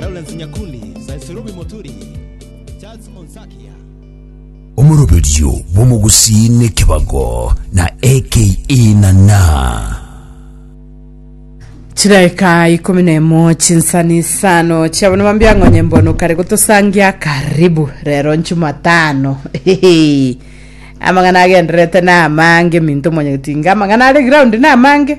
Lawrence Nyakundi, Zaiserobi Moturi, Charles Onsakia. Omoroberio bw'omogusii nekebago, na aka ina na. Chidaeka ikomi na emo chinsani isano chia bono mambia ng'onye mbono kare gotosangia karibu rero nchumatano Hehe. amang'ana agendererete na amange minto mwanyagetinga amang'ana are ground na amange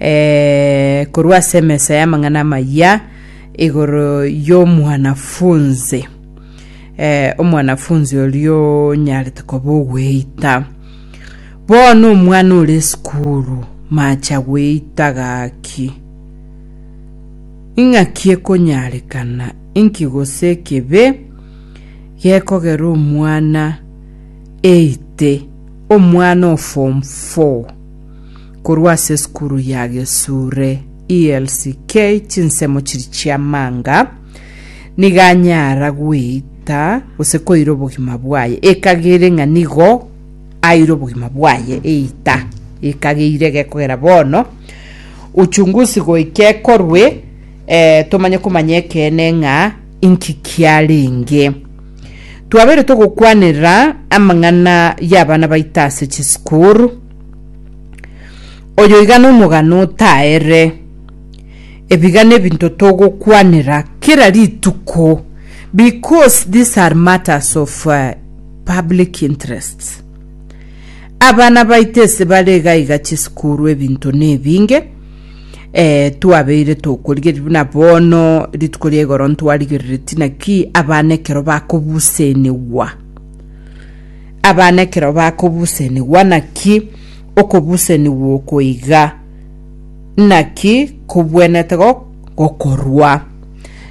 eh, korwa ase emesa y'amang'ana amayia igoro y'omwanafunzi eh, omwanafunzi orio onyarete koba ogweita bono omwana ore esukuru macha gweita gaki ing'aki ekonyarekana inki gose ekebe gekogera omwana eite omwana o form 4 Korwa ase esukuru ya Gesure ELCK chinsemo chiri chi'amanga, nigo anyara gweita gose koira obogima bwaye ekagere ng'a nigo aire obogima bwaye eita ekageire gekogera bono uchunguzi goika ekorwe eh, tomanye komanya ekeene ng'a inki kiarenge twabeire togokwanera amang'ana y'abana baito ase chisukuru Oyoigana omogano otaere. Ebiga nebinto togokwanera kera rituko because these are matters of uh, public interests. Abana baito ase bare iga iga chisukuru ebinto nebinge eh, twabeire tokorigereria buna bono rituko ria igoro ntwarigereretie naki abana ekero bakobusenigwa Abana ekero bakobusenigwa naki okobusenigwa oko iga? Naki kobwenete gokorwa?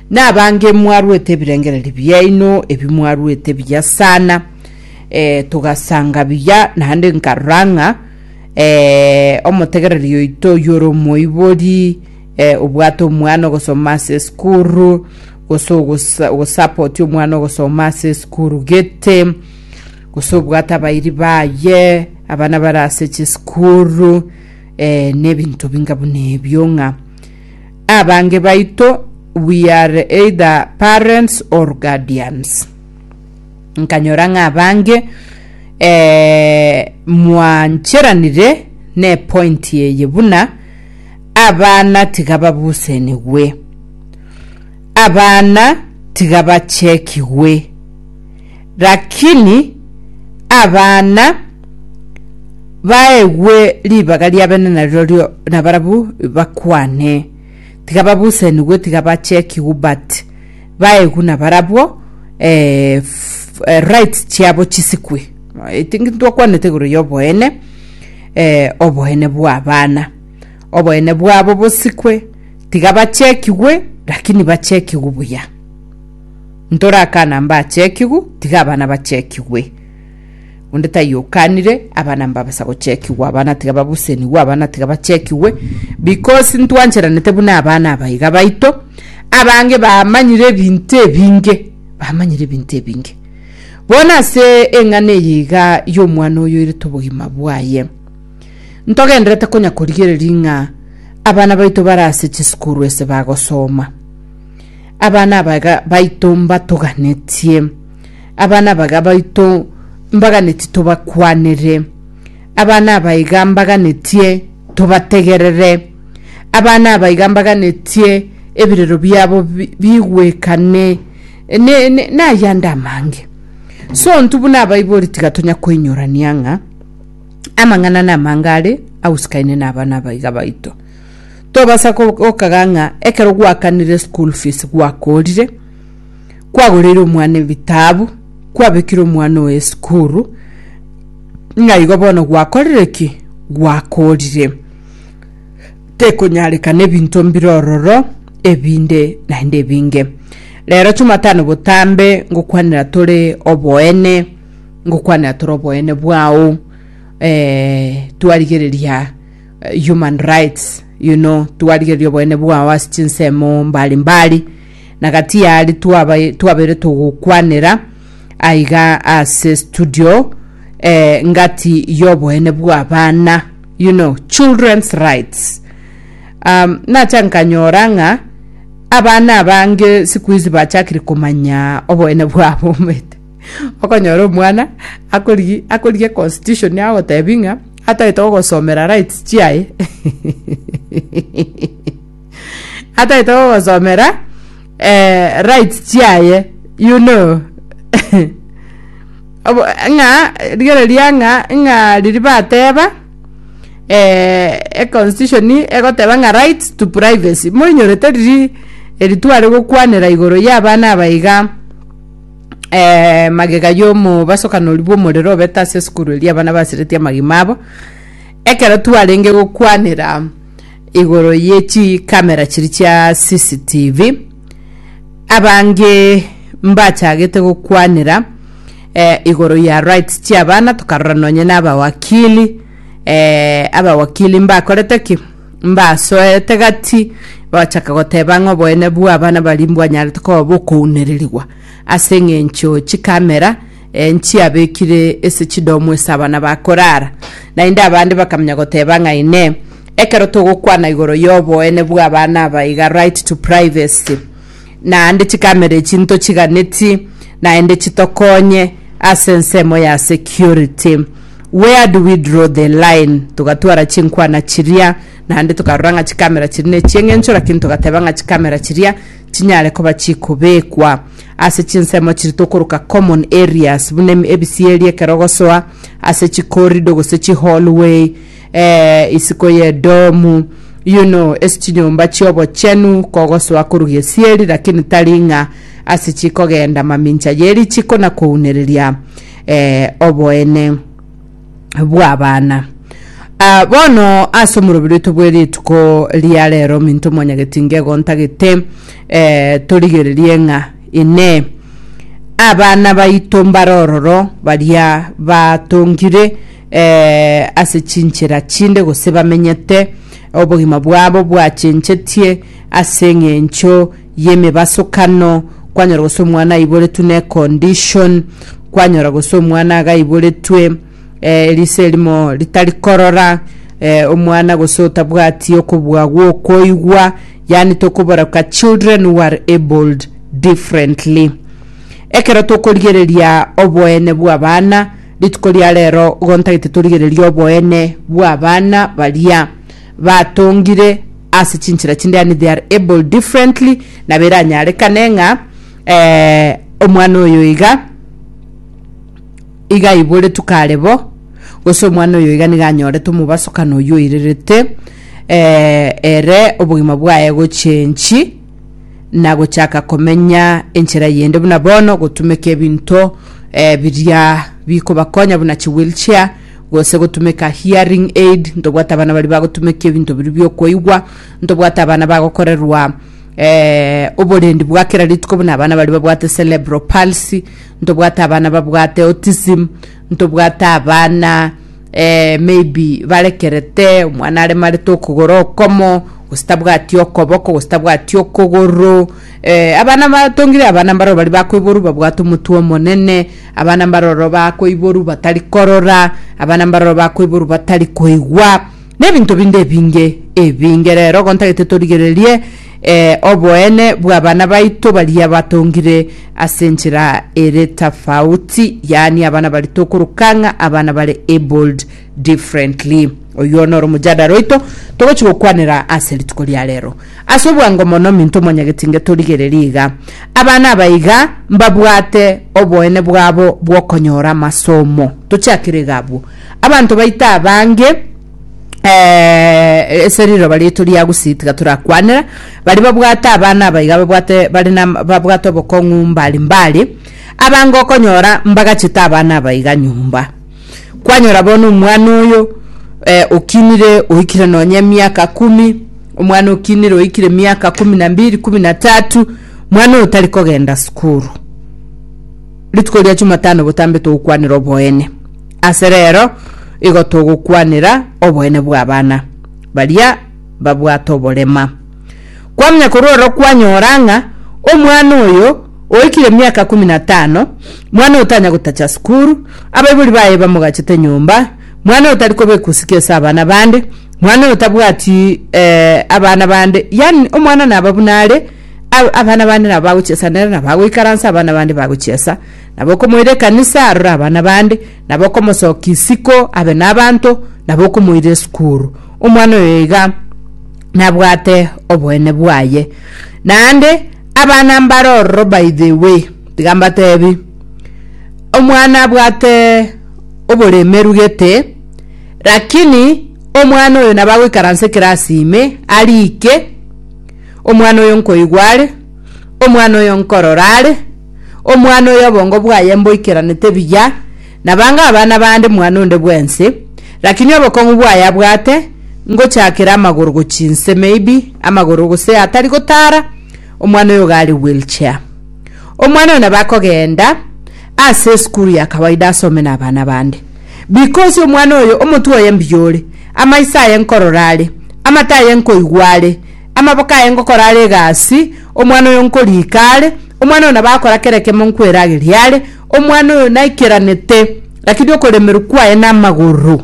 Nabange mwarwete ebirengererio biaino ebi mwarwete biya sana. E, togasanga biya naende nkarora ng'a e, omotegereri oito oyore omoibori e, obwate omwana ogosoma ase esukuru gose ogosapoti omwana ogosoma ase esukuru gete gose obwate abairi baye abana bare ase chisukuru eh, nebinto binga buna ebio ng'a abange baito we are either parents or guardians nkanyora ng'a abange eh, mwancheranire ne point eye buna abana tiga babusenigwe Abana tiga bachekigwe, lakini abana baegwe ribaga ria bene narirorio nabarabu bakwane. Tiga babusenigwe tiga bachekigwe but baegwe nabarabwo eh, f- eh, rights chiabo chisikwe. I think ntwakwanete igoro ya oboene eh, oboene bwa abana. Oboene bwabo bosikwe, tiga bachekigwe, lakini bachekigwe buya. Ntorakana mbachekigwe, tiga abana bachekigwe. Onde taiyo okanire abana mbabasa gochekigwa, abana tiga babusenigwe, abana tiga bachekigwe, because ntwancheranete buna abana abaiga baito, abange bamanyire ebinto ebinge, bamanyire ebinto ebinge. Bono ase eng'ana eye iga y'omwana oyo oirete obogima bwaye, Ntogenderete konya korigereria ng'a abana baito bare ase chisukuru ase bagosoma. Abana aba iga baito mbatoganetie. Abana aba iga baito mbaganetie tobakwanere. Abana aba iga mbaganetie tobategerere. Abana aba iga mbaganetie ebirero biabo bi- bigwekane. Ne- ne- Nayande amange. So ntubuna abaibori tiga tonya koinyorania ng'a Amang'ana namange are agusukaine na abana abaiga baito. Tobasa gokaga ng'a ekero gwakanire school fees gwakorire, kwagoreire omwana ebitabu, kwabekire omwana oyo esukuru, ng'a igo bono gwakorire ki? Gwakorire. Tekonyarekana ebinto mbire ororo ebinde naende ebinge. Rero Jumatano botambe ngokwanera tore oboene, ngokwanera tore oboene bwao eh, twarigereria eh, human rights you know twarigereria oboene bwao ase chinsemo mbari mbari na gati yari twaba- twabaire togokwanera aiga ase studio eh, ngati yoboene bw'abana you know children's rights um, nacha nkanyora ng'a abana abange siku hizi bachakire komanya oboene bwabo omete Okonyora omwana akorigia akorigia constitution agotebi ng'a atagete gogosomera rights chiaye atagete gogosomera eh, rights chiaye you know Obo, ng'a rigereria ng'a ng'a riri bateba eh, e constitution egoteba ng'a rights to privacy moinyorete riri eri tware gokwanera igoro y'abana aba iga eh, magega y'omobasokanori bw'omorero obete ase esukuru eria abana basiretie amagima abo ekero twarenge gokwanera igoro ye chikamera chiri chia cctv abange mbachagete gokwanera eh, igoro ya rights chiabana tokarora nonye na abawakili eh, abawakili mbakorete ki mbasoete gati bagachaka goteba ng'a oboene bw'abana baria mbwanyarete koba bokounererigwa ase eng'encho chikamera eh, nchiabekire ase chidomu ase abana bakorara. Naende abande bakamanya goteba ng'a ine ekero togokwana igoro y'oboene bw'abana aba iga right to privacy naende chikamera echi ntochiganeti naende chitokonye ase ensemo ya security. Where do we draw the line? Togatwara chinkwana chiria naende tokarora ng'a chikamera chiria nechieng'encho lakini togateba ng'a chikamera chiria chinyare koba chikobekwa ase chinsemo chiri tokoroka common areas buna ebisieria ekero ogosoa ase chicorridor gose chihallway Ee, isiko y'Edomu, yuno ase chinyomba chi'obochenu kogosoa korwa gesieri, lakini tari ng'a ase chikogenda mamincha ye richiko na kounereria ee, oboene bw'abana. Ah, bono ase omorobiri oito bwe rituko ria rero ominto mwanyagetinga egontagete ee, torigererie ng'a Inee, abana baito mbare ororo baria batongire ase chinchera chinde, gose bamenyete obogima bwabo bwachenchetie ase eng'encho y'emebasokano, kwanyora gose omwana aiboretwe ne condition, kwanyora gose omwana iga aiboretwe eh, riso erimo ritari korora, eh, omwana gose otabwati okobua gwokoigwa, yani tokoboreka children who are abled differently. Ekero tokorigereria oboene bw'abana, Rituko ria rero igo ntagete torigererie oboene bw'abana baria batongire ase chinchera chinde yaani they are able differently nabo eranyarekane ng'a eh, omwana oyo iga iga aiboretwe kare bo gose omwana oyo iga niga anyorete omobasokano oyio oirerete eh, ere obogima bwaye gochenchi na gochaka komenya enchera yende buna bono gotumeka ebinto eh, biria bikobakonya buna chi wheelchair gose gotumeka hearing aid ntobwate abana bari bagotumeka ebinto biri biokoigwa ntobwate abana bagokorerwa eh, oborendi bwa kera rituko buna abana bari babwate cerebral palsy ntobwate abana babwate autism ntobwate abana maybe barekerete omwana aremarete okogoro okomo gose tabwati okoboko gose tabwati okogoro eh, abana batongire abana mbaroro bari bakoiboru babwate omotwe omonene abana mbaroro bakoiboru batari korora abana mbaroro bakoiboru batari koigwa na ebinto binde ebinge ebinge rero gontagete torigererie Ee, oboene bw'abana baito baria batongire ase enchera ere tofauti, yaani abana baria tokoroka ng'a abana bare abled differently. Oyio noro omojadara oito togochi gokwanera ase rituko ria rero. Ase obwango mono minto mwanyagetinge torigererie iga, abana aba iga mbabwate oboene bwabo bw'okonyora amasomo. Tochakire iga abwo, abanto baito abange, eh, ase riroba riaito ria gusii tiga torakwanera bari babwate abana abaiga babwate bari na babwate obokong'u mbari mbari abange okonyora mbagachete abana abaiga nyomba kwanyora bono omwana oyo eh, okinire oikire nonya emiaka kumi omwana okinire oikire miaka kumi na mbiri kumi na tatu mwana oyo tari kogenda sukuru rituko ria chumatano botambe togokwanera oboene Ase reero igo togokwanera oboene bw'abana baria babwate oborema. Kwamanya korwa oro kwanyora ng'a omwana oyo oikire emiaka ikomi na tano, mwana otanya gotacha sukuru, abaibori baye bamogachete nyomba, mwana otari koba ekusiki ase abana bande, mwana otabwati eh, abana bande, yaani omwana naba buna are, a- abana bande nabo bagochesa nere, nabo agoikaransa abana bande bagochesa, nabo okomoira ekanisa arore abana bande, nabo okomosokia isiko abe nabanto, nabo okomoira esukuru. Omwana oyo iga nabwate oboene bwaye. Naende abana mbare ororo by the way, tiga mbatebi, omwana abwate oboremeru gete, lakini omwana oyo nabo agoikaransa ekerasi ime arike omwana oyo nkoigwa are Omwana oyo nkorora are omwana oyo obongo bwaye mboikeranete buya nabange abana bande mwana onde bwensi, rakini obokong'u bwaye abwate ngochakera amagoro gochia inse maybe amagoro gose atari gotara omwana oyo iga are wheel chair. Omwana oyo nabo akogenda ase esukuru ya kawaida asome na abana bande because omwana oyo omotwe oye mbuya ore, amaiso aye nkorora are, amato aye nkoigwa are, Amaboko aye ngokora are egasi, omwana oyo nkorika are, omwana oyo nabo akora kera ekemo nkwerageria are, omwana oyo naikeranete, rakini okoremerwa kwaye namagoro.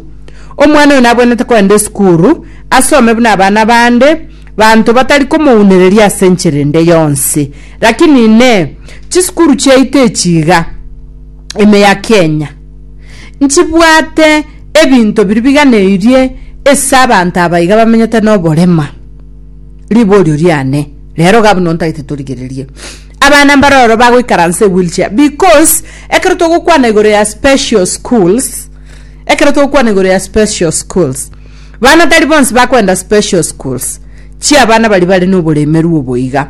Omwana oyo nabwenerete kogenda esukuru, asome buna abana bande, banto batari komounereria ase enchera ende yonsi. Rakini inee! Chisukuru chiaito echi iga? ime ya Kenya nchibwate ebinto biria biganeirie ase abanto abaiga bamenyete noborema riborio riane rero iga buna ontagete torigererie abana mbare oro bagoikaransa ewheelchair because ekero togokwana igoro ya special schools ekero togokwana igoro ya special schools bana tari bonsi bakoenda special schools chiabana baria bare noboremeru oboiga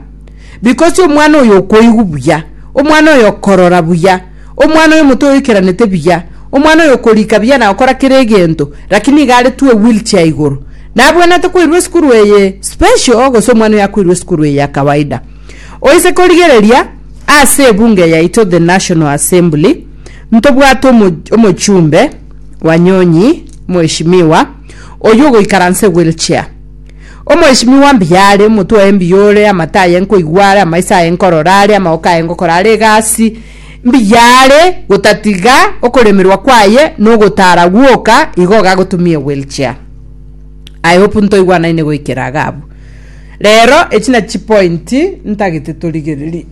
Because omwana oyo okoigwa buya, omwana oyo okorora buya, omwana oyo omote oyoikeranete buya, omwana oyo okorika buya na okora kera egento, lakini iga aretwe ewheelchair igoro. Nabwenerete koirwa esukuru eye special gose omwana oyo akoirwa esukuru eye ya kawaida? Oise korigereria ase ebunge yaito the National Assembly ntobwate omo omochumbe, Wanyonyi, Mheshimiwa, oyio ogoikaransa ewheelchair. Omoeshimiwa mbuya are, omotwe oye mbuya ore, amato aye nkoigwa are, amaiso aye nkorora are, amaoko aye ngokora are egasi mbuya are, gotatiga okoremerwa kwaye na ogotara gwoka, igo iga agotumia ewheelchair. I hope ntoigwanaine goikera iga abwo. Rero, echi nachipointi ntagete torigererie.